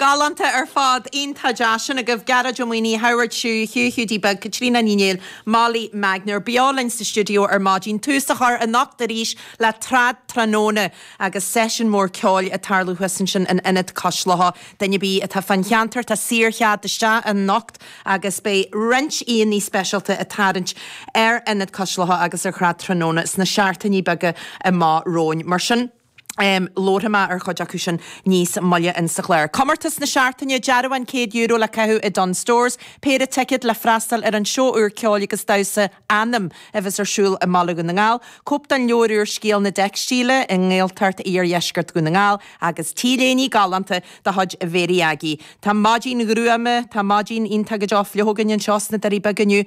Galánta ar fad. Iontach. Á, sin agaibh Gearóid Ó Maonaigh, Howard Chu, Hugh Hiúdaí Beag, Caitríona Ní Néill, Molly Magner beo linn sa stiúideo ar maidin. Tús á chur anocht arís le Trad Tráthnóna agus seisiún mór ceoil ag tarlú thuas ansin in Ionad Cois Locha. Duine ar bith atá fán cheantar, tá saor-chead isteach anocht agus beidh roinnt aíonna speisialta ag tarraingt ar Ionad Cois Locha agus ar Thrad Tráthnóna sna seachtainí beaga amach romhainn. Mar sin. labharfaidh mé ar chuid acu sin níos moille insa chlár. Comórtas na Seachtaine, Dearbhán €100 le caitheamh i Dunnes Stores, péire ticead le freastal ar an seó úr ceoil agus damhsa 'Anam' a bheas ar siúl i mBaile Dhún na nGall, cóip den leabhar úr 'Scéal na dTeicstílí' i nGaeltacht Iardheisceart Dhún na nGall agus T-léiní galánta de chuid Mhary Aggie. Tá maidin ghruama, tá maidin iontach go deo fliuch againn anseo sna Doirí Beaga inniu.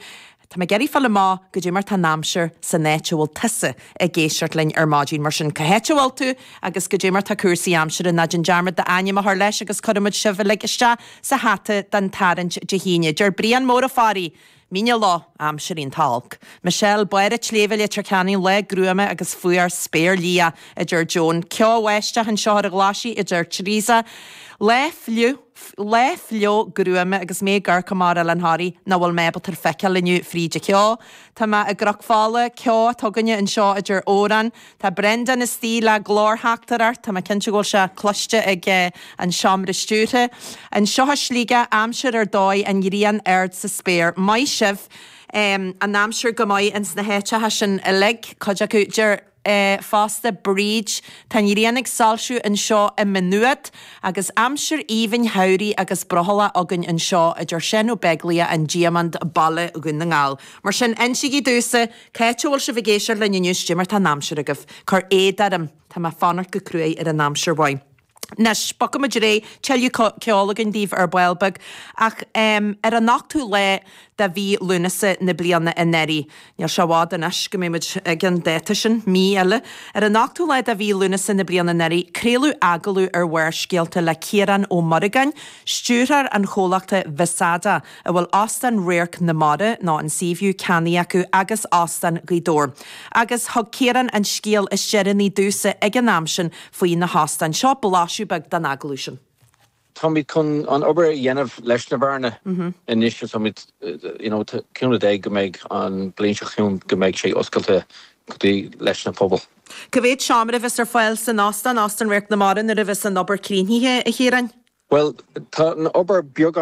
Tá mé ag iarraidh fáil amach goidé mar tá an aimsir san áit a bhfuil tusa ag éisteacht linn ar maidin. Mar sin, cá háit a bhfuil tú agus goidé mar tá cúrsaí aimsire? Ná déan dearmad d'ainm a chur leis agus cuirfimid sibh uilig isteach sa hata don tarraingt Dé hAoine. Deir Brian Mór Ó Fearraigh, Mín na Loch, aimsir iontach olc. Michelle, Barr an tSléibhe, Leitir Ceanainn, Lá gruama agus fuar, spéir liath, a deir Joan. Ceo amháin isteach anseo ar an Ghlaisigh, a deir Teresa. Lá fliuch. Lá fliuch gruama agus mé ag amharc amach ar Oileán Thoraí nach bhfuil mé ábalta a fheiceáil inniu fríd an cheo. Tá mé i gCnoc Fola, ceo tiubh againn anseo, a deir Odhrán. Tá Brendán istigh le glórtheachtaireacht. Tá mé cinnte go bhfuil sé cloiste ag an Seomra Stiúrtha. Anseo i Sligeach aimsir ar dóigh an ghrian ard sa spéir. Maith sibh! An aimsir go maith ins na háiteacha sin uilig, cuid acu. Deir. é fosta, Bríd. Tá an ghrian ag soilsiú anseo i Maigh Nuat, agus aimsir aoibhinn shamhraidh agus brothallach againn anseo a deir Seán Ó Beaglaoich, an Diamond, Baile Dhún na nGall. Mar sin, insígí domhsa cá háit a bhfuil sibh ag éisteacht linn inniu, 's goidé mar tá an aimsir agaibh. Cuir éad orm, tá mé ag fanacht go cruaidh ar an aimsir mhaith. Anois, bogfaimid ar aghaidh, tuilleadh ceoil againn daoibh ar ball beag, ach ar an ochtú lá de mhí Lúnasa na bliana anuraidh. Níl sé i bhfad anois go mbeimid ag an dáta sin, mí eile. Ar an ochtú lá de mhí Lúnasa na bliana anuraidh, craoladh agallamh ar Bharrscéalta le Ciarán Ó Muireagáin, stiúrthóir an chomhlachta Vesada, a bhfuil Óstán Radharc na Mara nó an Seaview ceannaithe acu agus Óstán Ghaoth Dobhair. Agus thug Ciarán an scéal is deireanaí domhsa ag an am sin faoi na hóstáin. Seo blaiseadh beag den agallamh sin. Táimid chun an obair a dhéanamh leis na beáranna anois is táimid you know cúnamh Dé go mbeidh an bliain seo chugainn go mbeidh sé oscailte go dtí leis na pobal. Cá mhéad seomra a bheas ar fáil san óstán, Óstán Radharc na Mara, nuair a bheas an obair críochnaithe, a Chiaráin? Bhuel, tá an obair beagán.